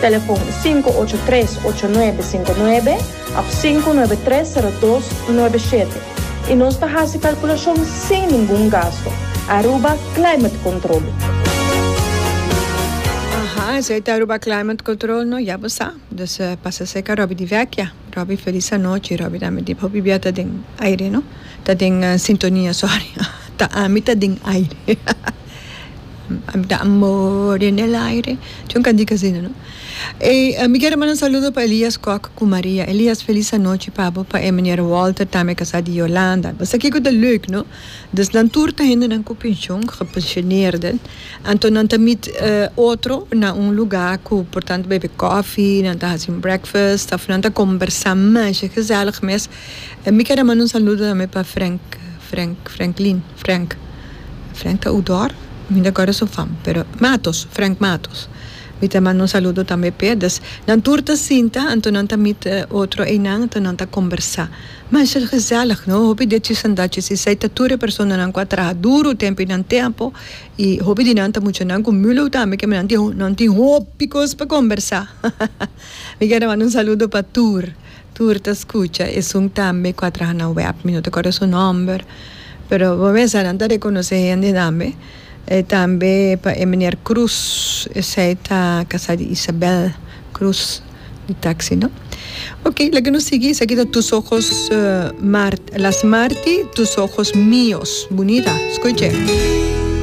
Telefon sinku ocho tres ocho nuebe sinku nuebe òf sinku nuebe tres sero dos nuebe shete i nos ta hasi kalkulashon sin ningun gastu. Aruba Climate Control. Aha, esei ta Aruba Climate Control no, ya bo sa. Dus pasa serka Robby di Vecchia. Robby, felis anochi. Robby ta meti hopi bia ta den aire no, ta den sintonia, sorry. Ta ami ta den aire. Ami ta more n'el aire Yo n'ka di kazina no Ey mi kier a manda un saludo pa Elias Kok ku Maria Elias felis anochi pa bo pa e meneer Walter tambe e kasa di Yolanda Esaki ku ta leuk no Dus nan tur ta hendenan ku penshon gepensioneerden anto nan ta mit otro na un luga ku por tantu bebe koffie nan ta hasi un breakfast òf nan ta kombersá masha gezèlig mes Mi keda manda un saludo tambe pa Frenk, Frenk, Frenklin, Frenk, Frenk ta oudor? Mi no ta guarda su fam, pero Matos, Frenk Matos, mi ta manda un saludo tambe p'e, dus nan tur ta sinta, anto nan ta mit otro einan, anto nan ta combersa, ma es el gezellig no, hopi di e chisandachi si esei ta tur e personanan cu a traha duro tempi nan tempo, y hopi di nan ta muchanan cu Mulow tambe, kema nan tin hopi cos pa combersa, hahaha, mi keda manda un saludo pa tur. Tur ta scucha esun tambe cu a traha na web. Mi no ta acorda su nomber, pero bo mester nan ta reconoce hende tambe. E tambe pa e meneer Cruz, esey ta casa di Isabel Cruz, di taxi no. Ok, laga nos sigui, esaki ta Tus ojos mar, Las marti, Tus ojos mios, bunita, scuche.